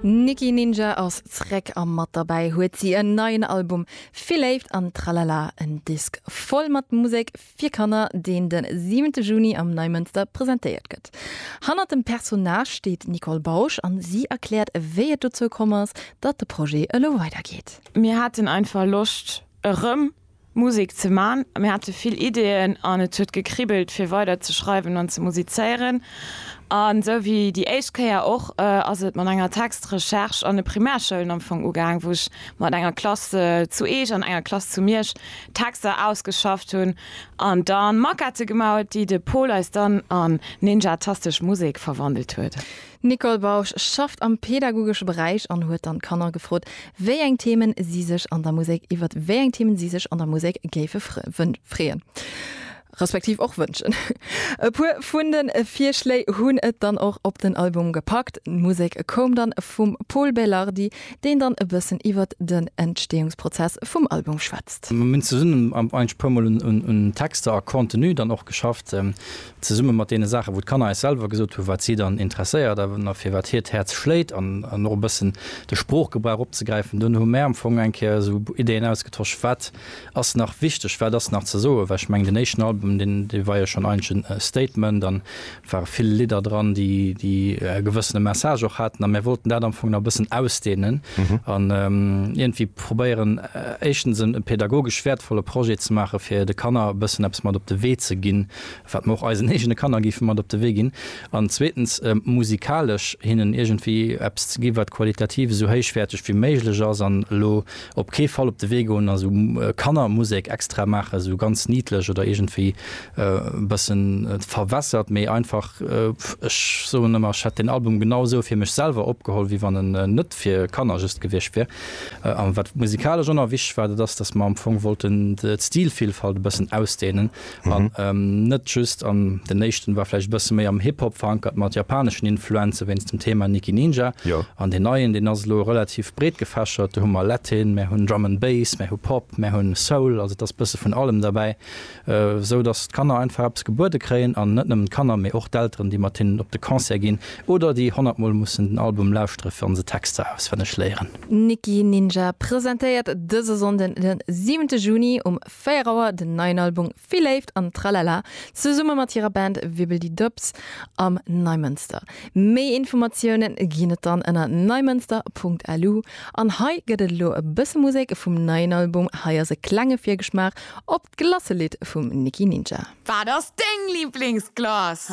D'Nicky Ninja ass zréck a mat derbäi huet si en neien Album Vill Léift an Tralala, en Disk voll mat Musek fir Kanner, deen de siwente Juni am Neimënster presentéiert gëtt. Hannert dem Personnage steet d'Nicole Bausch an si erkläert, wéi et dozou komm ass, datt de Projet elo weidergeet. Mir haten einfach Loscht erëm Musek ze man. Mir hate vill Ideeën an et huet gekribbelt fir weider ze schreiwen an ze musizéieren. An esou wéi déi éischt Kéier och ass et mat enger Textrecherche an de Primärschoulen am Fong ugaang, wou ech mat enger Klass zu Eech an enger Klass zu Miersch Texter ausgeschafft hunn an dann Maquette gemaut, déi de Pol eis dann an ninjatastesch Musek verwandelt huet. D'Nicole Bausch schafft am pedagogesche Beräich an huet dann d'Kanner gefrot, wéi eng Themen si sech an der Musek iwwer wéi eng Themen si sech an der Musek géife freeën, respektiv och wënschen. E puer vun de Virschléi hunn et dann och op den Album gepackt. D'Musek koum dann vum Pol Belardi, deen dann e bëssen iwwer den Entsteeungsprozess vum Album schwätzt. Mir hunn zesummen eintg puer mol un Texter a Contenu dann och geschafft. zesumme mat deene Saachen, wou d'Kanner eis selwer gesot hunn, wat si dann interesséiert a fir wat hiert Häerz schléit, an och e bëssen de Sproochgebrauch opzegräifen, dunn hu mär am Fong eng Kéier esou Ideen ausgetosch, wat ass nach wichteg, wat ass nach ze soen, well ech mengen, deen éischten Album, deen, dee war jo schonn eigentlech e Statement an et ware vill Lidder dran, déi, déi e gewëssene Message och haten, a mär wollten dat am Fong nach e bëssen ausdeenen an iergendwéi probéieren, éischtens e pädagogesch wäertvolle Projet ze maachen, fir de Kanner e bëssen eppes mat op de Wee ze ginn. wat mer och eisen eegene Kanner géife mat op de Wee ginn, an zweetens musikalesch hinnen iergendwéi eppes ze gi wat qualitativ esou héichwäerteg wéi méiglech ass, an elo op kee Fall op de Wee goen a sou Kannermusek extra maachen, sou ganz niedlech oder iergendwéi e bëssen verwässert, mee einfach, ech soen ëmmer, ech hätt deen Album genau esou fir mech selwer opgeholl wéi wann en net fir Kanner just gewiescht wier. A wat musikalesch och nach wichteg war, dat ass, datt mer am Fong wollten d'Stilvielfalt e bëssen ausdehnen, An net just an, den éischten war vläicht e bësse méi am Hip-Hop verankert mat japaneschen Influenze wéinst dem Thema Nikki Ninja. An deen neien, deen ass elo relativ breet gefächert. Do hu mer Latin, mär hunn Drum and Bass, mär hu Pop, mär hunn Soul, also et ass e bësse vun allem derbäi, esou datt d'Kanner einfach eppes gebuede kréien. An net nëmmen d'Kanner, mee och d'Elteren, déi mat hinnen op de Concert ginn oder déi honnert Mol mussen den Album lauschtere fir an se Texter auswenneg léieren. Nikki Ninja presentéiert dëse Sonnden, den siwente Juni um 4 Auer den neien Album Vill Léift an Tralala zesumme mat hirer Band Wibbel Di Dubs am Neimënster. Méi Informatioune ginn et dann ënner neimënster.lu. An hei gëtt et elo e bësse Musek vum neien Album. Hei ass e klenge Virgeschmaach op d'Glasselidd vum Nicky Ninja. Wat ass deng Liblingsglace?